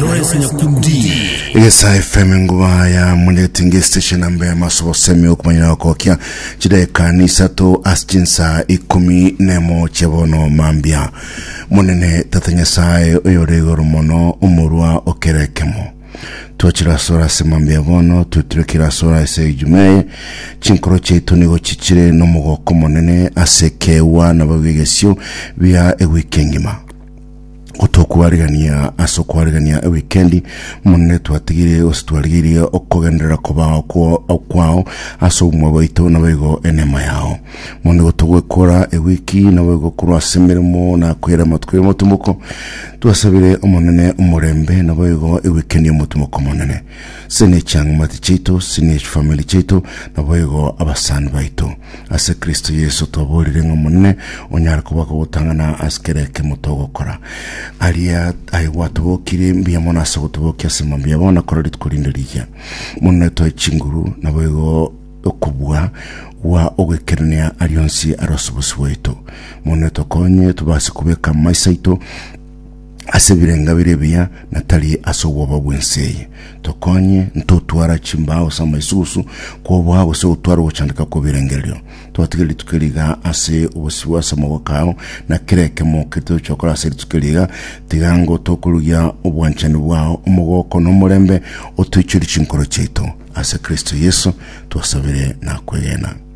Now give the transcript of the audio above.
Lawrence Nyakundi. egesa fm nguba ya muletinga estation namba ya masobo semi okumanyira gokokia chideka ni isato ase chinsa ikumi nemo chebono mambia monene tata nyasaye oyore igoro mono omorwa okerekemo twachira sora ase mambia bono tweturekera sora ase ejumeye chinkoro chiaito nigo chichire nomogoko monene ase kewa nabo egesio bia ewiki engima gotokwarigania ase okwarigania ewikendi monene twatigire gose twarigirie okogenderera kobao kwao kwao ase obumwa bwaito naboigo enema yao monene gotogwekora ewiki naboigo korwa ase emeremo na kwera amatuko y'omotumoko twasabire omonene omorembe naboigo ewikendi y'omotumoko monene sine chiang'amati chaito sine chifamili chaito naboigo abasani baito Ase Kristo Yeso twaborire ng'a Omonene onyare kobaga ogotang'ana ase kera ekemo togokora. Aria aye gwatobokirie mbuya mono ase ogotobokia ase mambia yabo na korora rituko rinde riya. Mono netoe chinguru, naboigo okobua gwa ogoikerania aria onsi aro ase obosio bwaito. Mono netokonye tobase kobeka amaiso aito ase ebirenga biria ebiya na tari ase obwoba bw'ense eye. Tokonye ntotwara chimbao ase amaisugusu kw'oboa gose gotwara ogochandeka kw'ebirengererio. Tobatiga rituko eri iga ase obosibwa ase amaboko ao, na kera ekemo keria tochia gokora ase rituko eri iga, tiga ngo tokorugia obwanchani bwao, omogoko, na omorembe, otoichorie chinkoro chiaito. Ase Kristo Yeso twasabire na kwegena.